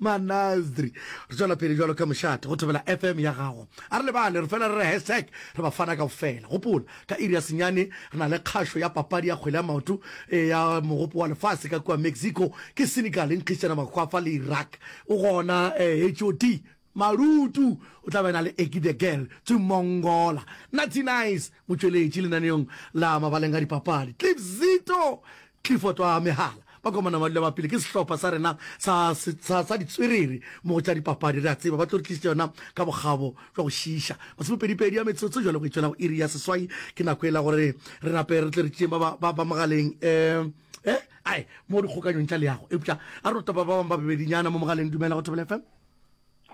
Manasdri. Re tšwela pele jwalo ka mošate go thobela FM ya gago. A re lebale, re fela re re hashtag, re ba fana kaofela. Gopola, ka iri ya senyane re na le kgašo ya papadi ya kgwele ya maoto ya Mogopo wa Lefase ka kua Mexico ke Senegal e nkgišana makgwafa le Iraq. O gona HOD Marutu o tla be a na le Eki the Girl Tsummongola. Natty Nice motšweletši lenaneong la mabaleng a dipapadi. Cliffzito Clifford wa Mehala, Bakomana ba dula ba pele ke sehlopha sa rena sa, sa, sa ditswerere mo go tša dipapadi. Re a tseba ba tlo re tlišetša yona ka bokgabo jwa go šiiša. Masomepedipedi a metsotso jwale go e tšwela go iri ya seswai ke nako e la gore re nape re tle re tšeeng ba, ba, ba, ba mogaleng. Um. E, ae, mo dikgokanyong tša leago. Eupša a re no topa ba bangwe ba bebedinyana mo mogaleng. Dumela go Thobela FM.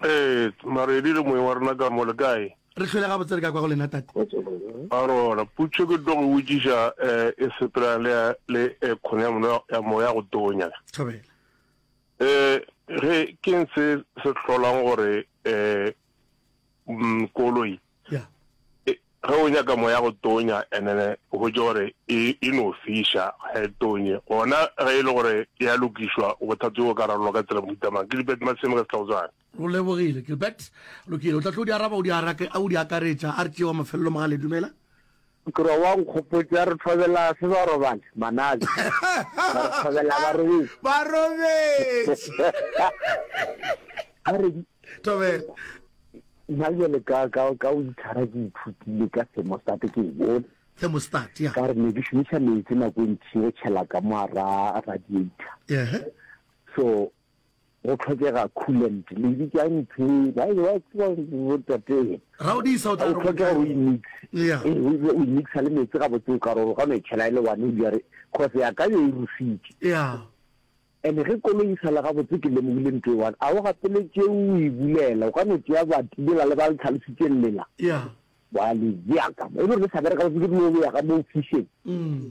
Ee, Maredi le moeng wa rena ka mo, le kae? Re hlwele gabotse re ka kwa go lena, Tate. A rona, putšo ke tlo go botšiša eh, e sepelana le, le eh, kgono ya mono ya moya ya go tonya. Thobela. Eh, ge, keng se se hlolang gore eh, mm, koloi? ya e- ge o nyaka moya go tonya enene o hwetše gore e e no fiša ga e tonye gona ge e le gore e a lokišwa bothata jo bo ka rarolwa ka tsela mohutamang ke dipet maseme ka setlagotswana o lebogile gilbert lokile o tla tlo di araba o di arake a o di akaretša a re tšewa mafelelo magale dumela Nkrwa wa nkgopotša re thobela se ba robale manabi ba re thobela ba robetše ba robetše a re thobela nna jale ka ka ka o ithara ke ithutile ka semo state ke bone semo state ya ka re ne ke shumisa metsi nako e ntši go tšhela ka mo ra radiator yeah so Go tlhokega coolant. Le bitša ntho e, ba e ba tseba bo tate. Ra o disa o tla re go tlhokega go e mix. Yeah. E o e mixa le metsi ga botse o ka roro ka no e tshela ile one o jare cause ya ka yo e rusitše. Yeah. Ene ge kolo e sala ga botse ke lemogile ntho e one. A o gapeletše o e bulela o ka no tšea ba tibela le ba le tlhalositše lela. Yeah. Wa le jaka. E le re sa bereka go ke dilo ya ga mo fisheng. Mm.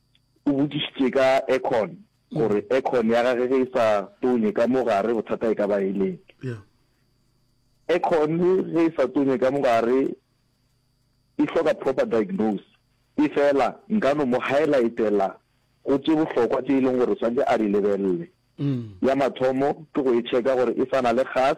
O botšišitše ka aircon gore aircon ya gage ge e sa tonye ka mo gare bothata e ka ba e leng. Aircon ge e sa tonye ka mo gare e hloka proper diagnose. Efela nka no mo highlightela go tše bohlokwa tše e leng gore swantše a di lebelele. Ya mathomo ke go e checka gore e sa na le gas.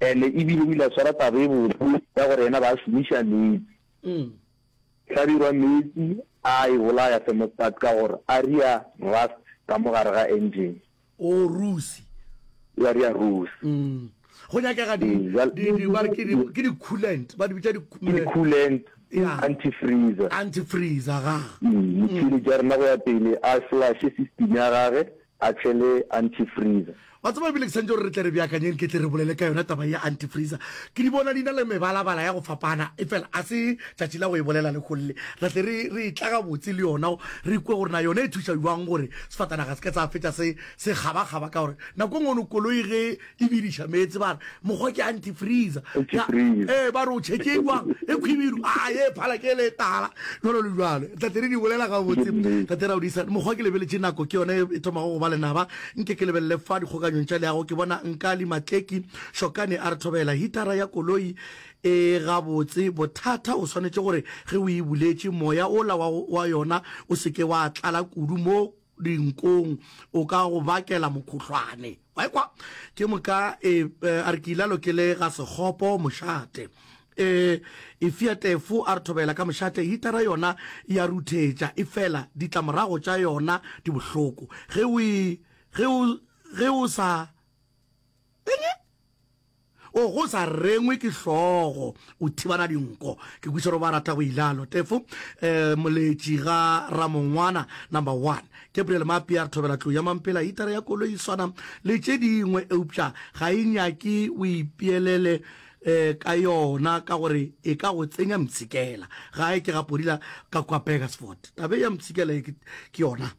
and ebile o ile a tshwara taba e botse ya gore yena ba šomiša metsi mm. hlabirwa metsi a e bolaya thermostat ka gore a ria rust ka mo gare ga engine o oh, rusi ya ria rusi mm. go nyakega ke di-coolant ba di bitsa di-coolant antifreezer antifreezer ga mm, motšhini ja rena go ya pele a flashe system ya gage a tšele antifreezer. Wa tseba, ebile ke santše gore re tle re beakanyeng ke tle re bolele ka yona taba ya antifreezer. Ke di bona di na le mebalabala ya go fapana, efela a se tšatši la go e bolela lekgong le. Re tle re re etla gabotse le yona re kwe gore na yona e thuša bjang gore sefatanaga se ke sa fetša se se kgabakgaba, ka gore nako e nngwe koloi ge e bediša meetse ba re mokgwa ke antifreezer ee ba re o tšheke jwang e khwibidu a ye phala ke le tala jalo le jalo tate re di bolela ga botse tate ra o disa mokgwa ke lebeletse nako ke yone e thomago go ba lenaba nke ke lebelele fa dikgokanyong tša leago ke bona nka le matleki shokane a re thobela hitara ya koloi e ga botse bothata o swanetše gore ge o e buletše moya ola wa yona o seke wa tlala kudu mo dinkong o ka go bakela mokhuhlwane wa ekwa ke moka e, e, a re ke ile lo ke le ga sekgopo mošate e e fia tefo a re thobela ka mošate hitara yona ya ruthetša e fela ditlamorago tša yona di bohloko ge o e, ge o sa O go sa rengwe ke hlogo o thibana dinko ke kwiša ro ba rata go ilalo tefo um moletši ga ramongwana number one gabriel mapi a re thobela tlou ya mampela hitara ya kolo e swana le tše dingwe eupša ga e nyake o ipeelele um ka yona ka gore e ka go tsenya mtshikela gae ke ga podila ka kwa begersford tabe ya mtshikela e ke yona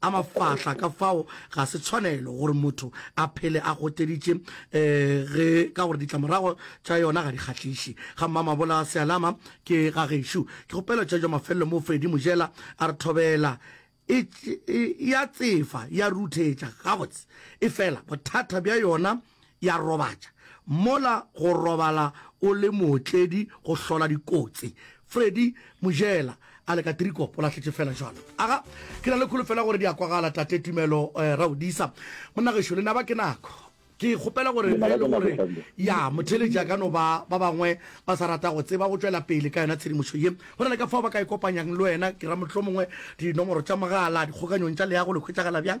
A mafahla ka fao ga se tshwanelo gore motho a phele a goteditše ge ka gore ditlamorago tša yona ga di kgahliše. Ga mmamabola sealama ke ga gešo. Ke kgopela tša jwa mafelelo mo Freddy Mojela a re thobela e ya tsefa ya ruthetša gabotse efela bothata bja yona ya robatša. Mola go robala o le mootledi go hlola dikotsi. Freddy Mojela a le ka Tirikop o lahletše fela jalo. Aga, ke na le kholofelo ya gore di a kwagala, Tate Tumelo eh, Raodisa. Monna gešo, le naba ke nako. Ke kgopela gore ge e le gore ya motheletši a ka no ba ba bangwe ba sa rata go tseba go tšwela pele ka yona tshedimošo ye, go na le ka fao ba ka e kopanyang le wena, ke ra mohlomongwe dinomoro tša mogala, dikgokanyong tša leago le hwetšagala bjang?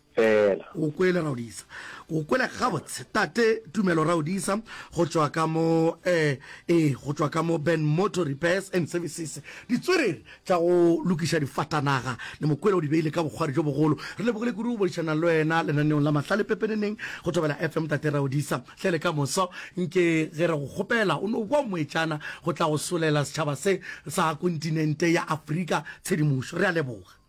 fela. O kwele, Ra o disa. O kwele gabotse, Tate Tumelo, Ra o disa, go tšwa ka mo, ee, ee, go tšwa ka mo Ben Motor Repairs and Services, ditswerere tša go lokiša difatanaga. Le mo kwele o di beile ka bokgwari bjo bogolo. Re lebogile kudu go boledišana le wena lenaneong la mahlale pepeneneng go Thobela FM, Tate Ra o disa. Hle le ka moso, nke ge re go kgopela o no bwa moetšana go tla go solela setšhaba se sa kontinente ya Afrika tshedimošo. Re a leboga.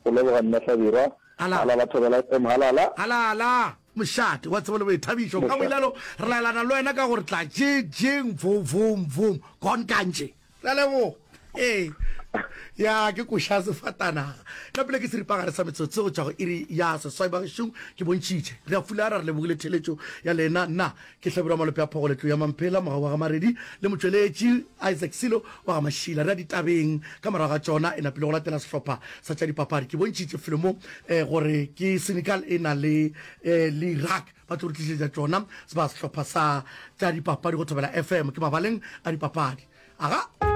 Go leboga Mme Hlabirwa. Halala. Halala Thobela FM Halala. Halala mošate wa tsebo le boithabišo. Mošate. Ka boilelo re laelana le wena ka gore tla je jeng vo vo vo gone kantše. Re a leboga. Ee. Ya ke koša sefatanaga. Nna pele ke seripagare sa metsotso go tšwa go iri ya seswai bagešong ke bontšhitše. Re a fulara re lebogile theeletšo ya lena. Nna Ke Hlabirwa Malope a Phogo Letlou ya Mamphela, mogau wa ga Maredi le motšweletši Isaac Silo wa ga Mašila. Re ya ditabeng. Ka morago ga tšona e napile go latela sehlopha sa tša dipapadi. Ke bontšhitše felo mo gore ke Senegal e na le L'Iraq. Ba tlo re tlišetša tšona ba sehlopha sa tša dipapadi go Thobela FM. Ke mabaleng a dipapadi. Aga!